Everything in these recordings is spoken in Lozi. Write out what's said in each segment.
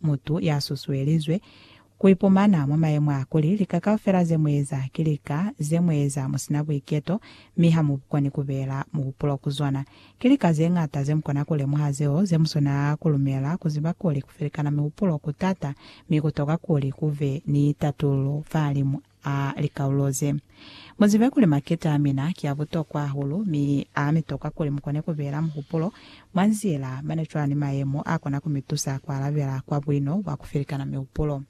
Mutu ya susuelizwe ku ipumana mwa mayemo a kuli lika kaufela ze mu eza ki lika ze mu eza mu si na buiketo mi ha mu koni ku beela muhupulo ku zona. Ki lika ze ñata ze mu kona ku lemuha zeo ze mu swana ku lumela ku ziba kuli ku felikana mihupulo ku t'ata mi ku tokwa kuli ku be ni tatululo fahalimu a likaulo ze. Mu zibe kuli maketa a mina ki a butokwa hahulu, mi a mi toka kuli mu kone ku beela muhupulo mwa nzila mane cwalo ni mayemo a kona ku mi tusa ku alabela kwa buino bwa ku felikana mihupulo.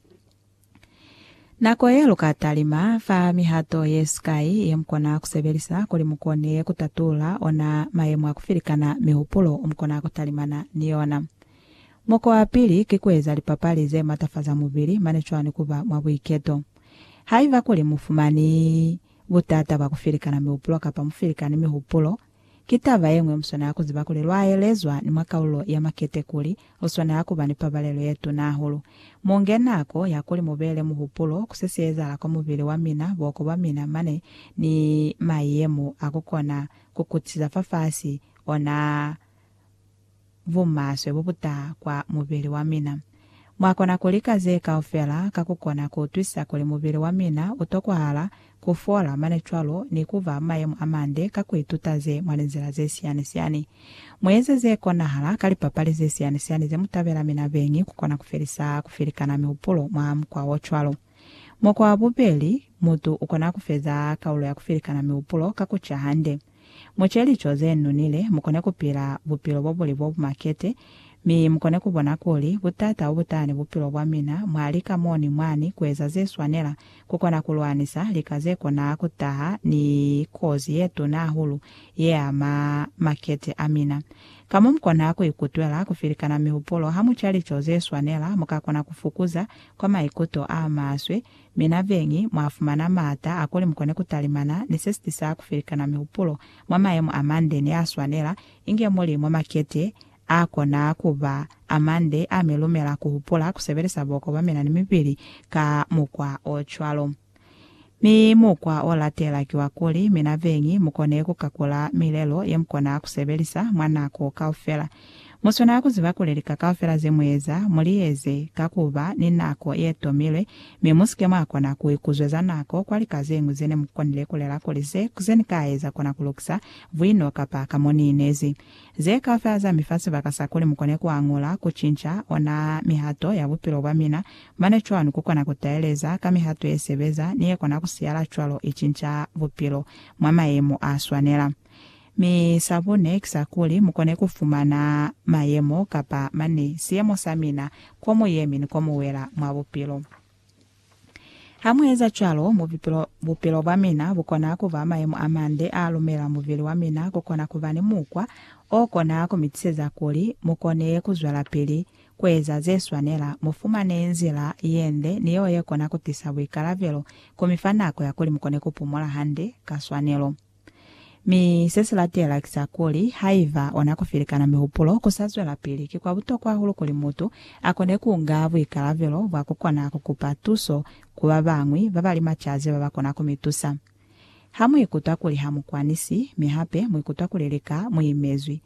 Nako ye lu ka talima fa mihato ye sikai ye mu kona ku sebelisa kuli mu kone ku tatulula ona mayemo a ku felikana mihupulo mu kona ku talimana ni yona. Mukwa wa pili ki ku eza lipapali ze matafaza mubili mane cwani ku ba mwa buiketo. Haiba kuli mu fumani butata bwa ku filikana mihupulo kapa mu filikani mihupulo, ki taba ye ñwi mu swanela ku ziba kuli lwa elezwa ni mwa kaululo ya makete kuli lu swanela ku ba ni pabalelo ye tuna hahulu. Mu nge nako ya kuli mu beele muhupulo ku se si ezahala kwa mubili wa mina, buhoko bwa mina mane ni mayemo a ku kona ku kutisa fafasi ona bumaswe bobutaha kwa mubili wa mina. Mwakona kulika ze kaufela ka kukona kuutwisisa kuli mubili wa mina utokwahala kufola mane cwalo ni kuba mumayemo amande ka kuituta ze mwa linzila zesiyani-siyani. Mueze zekonahala ka lipapali zesiyani-siyani zemutabela mi nabeñi kukona kufelisa kufilikana mihupulo mwa mukwa ocwalo. Mukwa wabubeli, mutu ukona kufeza kaulo ya kufilikana mihupulo ka kuca hande. Mu ce lico ze nonile, mu kone ku pila bupilo bo buli bo bu makete, mi mu kone ku bona kuli butata bo butahani bupilo bwa mina mwa lika mo ni mwani ku eza ze swanela ku kona ku lwanisa lika ze kona ku taha ni kozi ye tuna hahulu ye ama makete a mina. Ka mo mu kona ku ikutwela ku filikana mihupulo ha mu ca lico ze swanela, mu ka kona ku fukuza kwa maikuto a maswe Mi na beñi mwa fumana maata a kuli mukone ku talimana ni se si tisa ku felikana mihupulo mwa mayemo a mande ni a swanela, inge muli mwa makete a kona ku ba a mande a mi lumela ku hupula ku sebelisa boko bwa mina ni mibili ka mukwa o cwalo. Mi mukwa o latela ki wa kuli, mi na beñi mu kone ku kakula milelo ye mu kona ku sebelisa mwa nako kaufela. Mu swanela ku ziba kuli lika kaufela ze mu eza, mu li eze ka ku ba ni nako ye tomilwe, mi mu si ke mwa kona ku ikuzweza nako kwa lika ze ñwi ze ne mu konile ku lela kuli se, ze ni ka eza kona ku lukisa buino kapa ka mo ni inezi. Ze kaufela za mi fa sibaka sa kuli mu kone ku añula, ku cinca, ona mihato ya bupilo bwa mina. Mane cwanu ku kona ku taeleza ka mihato ye sebeza ni ye kona ku siyala cwalo i cinca bupilo mwa mayemo a swanela. Mi sa bune ki sa kuli mu kone ku fumana mayemo kapa mani, siyemo sa mina, ko mu yemi ni ko mu wela mwa bupilo. Ha mu eza cwalo, mubupilo, bupilo bwa mina bu kona ku ba mayemo a mande a lumela mubili wa mina ku kona ku ba ni mukwa o kona ku mi tiseza kuli mu kone ku zwelapili ku eza ze swanela, mu fumane nzila ye nde ni yeo ye kona ku tisa buikalabelo, ku mi fa nako ya kuli mu kone ku pumola hande, ka swanelo. Mi se si latela ki sa kuli, haiba ona ku filikana mihupulo ku sa zwelapili, ki kwa butokwa hahulu kuli mutu a kone ku nga buikalabelo bwa ku kona ku kupa tuso ku ba bañwi ba ba li macaze ba ba kona ku mi tusa. Ha mu ikutwa kuli ha mu kwanisi, mi hape mu ikutwa kuli lika mu imezwi,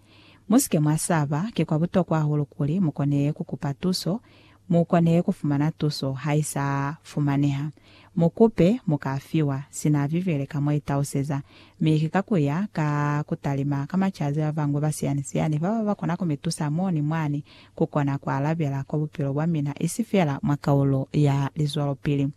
mu si ke mwa saba. Ki kwa butokwa hahulu kuli mu kone ku kupa tuso Mu kone ku fumana tuso ha i sa fumaneha. Mu kupe, mu ka fiwa. Sina Bibele ka mo i tauseza, mi ki ka ku ya ka ku talima ka macazi ba bañwi ba siyani-siyani ba ba ba kona ku mi tusa mo ni mwani ku kona ku alabela kwa bupilo bwa mina isi fela mwa kaulo ya lizwelopili.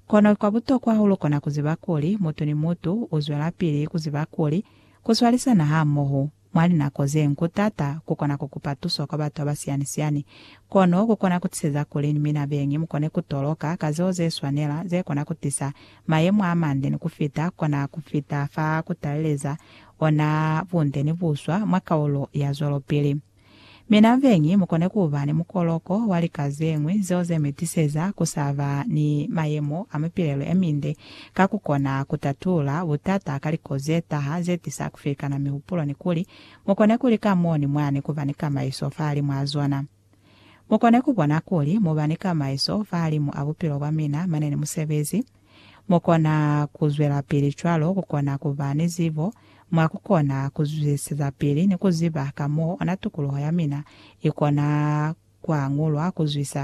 Kono kwa butokwa hahulu kona ku ziba kuli mutu ni mutu u zwelapili ku ziba kuli ku swalisana hamoho Mwa linako ze nku taata ku kona ku kupa tuso kwa batu ba siyani-siyani, kono ku kona ku tiseza kuli ni mina beñi mu kone ku toloka ka zeo ze swanela ze kona ku tisa mayemo a mande ni ku fita kona ku fita fa ku taleleza ona bunde ni buswa mwa kaulo ya zwelopili. Mi na beñi mu kone ku ba ni mukoloko wa lika ze ñwi zeo ze mi tiseza ku sa ba ni mayemo a mipilelo ye minde ka ku kona ku tatula butata ka liko ze taha ze tisa ku filikana mihupulo ni kuli mu kone ku lika mo ni mwani ku ba ni kamaiso fahalimw'a zona. Mu kone ku bona kuli mu ba ni kamaiso fahalimu a bupilo bwa mina mane ni musebezi. Mu kona ku zwelapili cwalo ku kona ku ba ni zibo mwa ku kona ku zwisisezapili ni ku ziba ka m'o ona tukuluho ya mina i kona ku añulwa ku zwisa